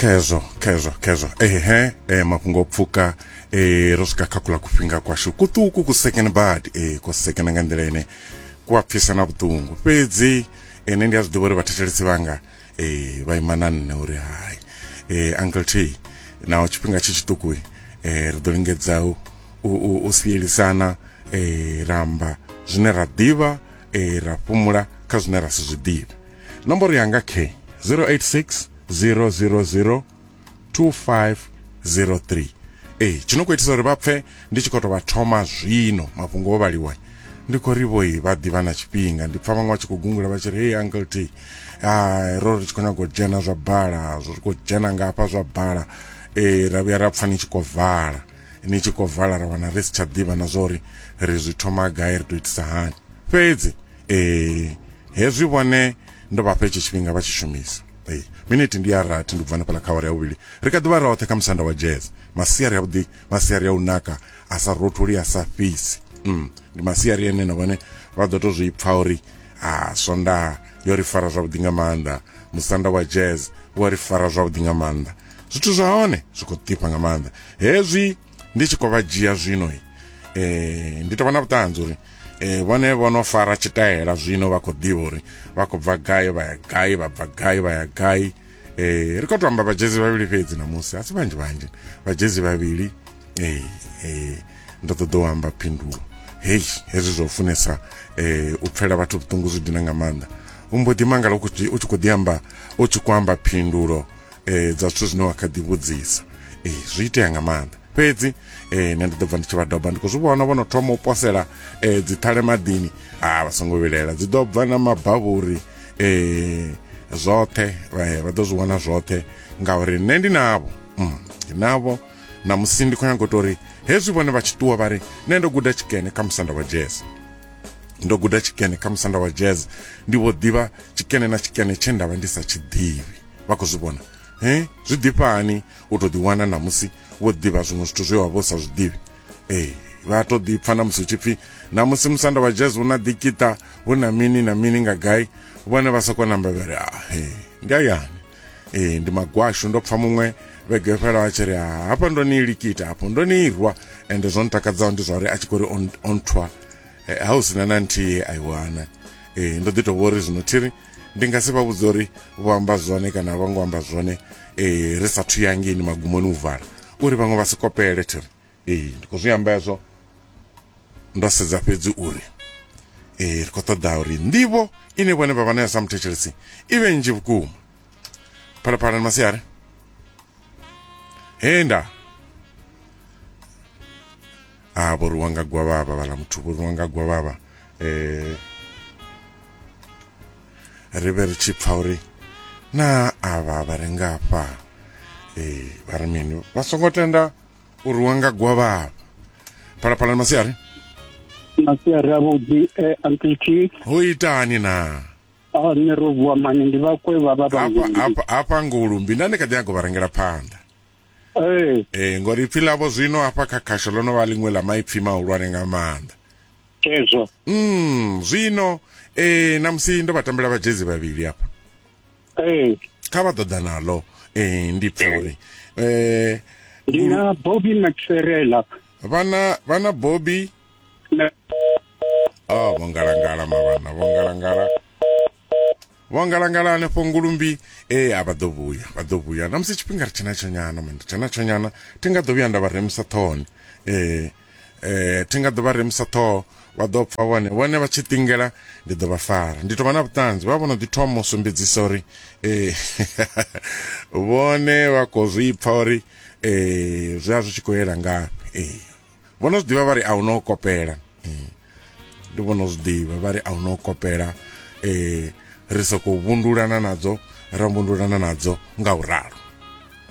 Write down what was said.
kezo kezo kezo ehe e, mafhungo pfuka e, ro swika kha kula kufhinga kwashu kuṱuku ku second bad e, ku second nga nḓila ine ku a pfisa na vhuṱungu fhedzi ene ndi a zwi ḓivha uri vhathetshelesi vhanga e, vha ima na nṋe uri hai e, uncle t naho tshifhinga tshi tshiṱuku e, ri ḓo lingedza u, u, u, u sielisana e, ramba zwine ra ḓivha e, ra fhumula kha zwine ra si zwi ḓivhe nomboro yanga khe 086 000 2503 ee tshi no khou itisa uri vha pfe ndi tshi khou tou vha thoma zwino mafhungo o vhaliwa ndi khou ri vhoi vha ḓivha na tshifhinga ndi pfa vhaṅwe vha tshi khou gungula vha tshi ri hey uncle t ah, ro ri tshi khou nyaga u dzhena zwa bala zwi khou dzhena nga hafha zwa bala ee ra vhuya ra pfa ni tshi khou vala ni tshi khou vala ra wana ri si tsha ḓivha na zwa uri ri zwi thoma gai ri tou itisa hani fhedzi eh hezwi vhone ndo vha fha hetshi tshifhinga vha tshi shumisa eh miniti ndi ya rathi ndi bvana phala kha awara ya vhuvhili ri kha ḓi vha roṱhe kha musanda wa jazz masiari ya vhuḓi masiari ya u naka a sa rotholi a sa fhisi mm ndi masiari ene na vhone vha ḓo to zwi pfa uri a swonda yo ri fara zwavhuḓi nga maanḓa musanda wa jazz wa ri fara zwavhuḓi nga maanḓa zwithu zwa hone zwi khou ḓifha nga maanḓa hezwi ndi tshi khou vha dzhia zwino um eh, ndi tou vha na vhuṱanzi uri um vhone vho no fara tshitaela zwino vha khou ḓivha uri vha khou bva gai vha ya gai vha bva gai vha ya gai um ri khou to amba vhajezi vhavhili fhedzi namusi a si vhanzhi vhanzhi vhajezi vhavhili um um ndo ṱoḓa u amba phindulo hei hezwi zwa u funesa um u pfela vhathu vhuṱungu zwi dina nga maanḓa u mbo ḓi mangala u tshi khou ḓi amba u tshi khou amba phindulo eh, dza zwithu zwine wa kha ḓi vhudzisa eh, zwi itea nga maanḓa fhedzi eh, nṋe ndi ḓo bva ndi tshi vha doba ndi khou zwi vhona vho no thoma u posela eh, dziṱhale maḓini a ah, vha songo vhilela dzi ḓo bva na mabavhuri eh, zwoṱhe eh, vha ḓo zwi vhona zwoṱhe ngauri nṋe ndi navho mm, ndi navho na musi ndi khou nyanga u to uri hezwi vhone vha tshi ṱuwa vha ri nṋe ndo guda tshikene kha musanda wa jazz ndo guda tshikene kha musanda wa jazz ndi vho ḓivha tshikene na tshikene tshe ndavha ndi sa tshi ḓivhi vha khou zwi vhona he zwi ḓifha hani u to ḓiwana na musi wo ḓivha zwiṅwe zwithu zwe wa vho sa zwi ḓivhi ee vha to ḓipfa na musi tshipfi na musi musanda wa jazz una dikita hu na mini na mini nga gai vhone vha soko namba vha ri a ah, he ndi ayani ee ndi magwashu ndo pfa muṅwe vhege fhela a tshi ri ah, hafha ndo ni likita hafho ndo ni irwa ende zwo ntakadzaho ndi zwa uri a tshi khou ri on, on tour eh, ha u sina na nthihi aiwana ee ndo ḓi to vhori zwino thiri ndi nga si vha vhudza uri vho amba zwone kana a vho ngo amba zwone um ri sathu ya ngeini magumoni u vala uri vhaṅwe vha si kopele thiri ee ndi khou zwi amba hezwo ndo sedza fhedzi uri ee ri khou ṱoḓa uri nḓivho ine vhone vha vha nayo sa muthetshelesi i vhe nnzhi vhukuma phalaphala ni masiari henda a vho rwiwa nga gwavhavha vhala muthu vho rwiwa nga gwavhavha eh ri vhe ri tshi pfa uri na avha vha re ngafha eh vha ri mini vha songo tenda u rwiwa nga gwavhavha phalaphalani masiari masiari avhuḓi eh, uncle t ho itani na a nṋe ro vuwa mani ndi vhakwe vha vha hafha vhangulumbi hafha hafha ngulumbi nda ni kha ḓi nyago vha rengela phanḓa ee ee ngori ipfi ḽavho zwino hafha kha khasho ḽo no vha ḽiṅwe ḽa maipfi mahulwane nga maanḓa kezwo mm zwino eh namusi ndo vha tambela vhajezi vhavhili hafha ee kha vha ḓoḓa naḽo eh ndi pfa uri eh ndi na bobby maxerela vhana vhana bobby na oh vho ngalangala mavhana vho ngalangala Vho ngalangala hanefho ngulumbi e a vha ḓo vhuya vha ḓo vhuya na musi tshifhinga ri tshena tsho nyana mani tshena tsho nyana thi nga ḓo vhuya nda vha remusa ṱhohoni eh eh thi nga ḓo vha remusa ṱhoho vha ḓo pfa vhone vhone vha tshi ṱingela ndi ḓo vha fara ndi tovha na vhuṱanzi vha vhono ḓi thoma u sumbedzisa uri eh vhone vha khou zwi pfa uri eh zwi a zwi tshi khou yela ngafhi eh vho no zwiḓivha vha ri a hu no kopela eh, ndi vho no zwiḓivha vha ri a hu no kopela um ri sokou vhundulana nadzo ra vhundulana nadzo nga u ralo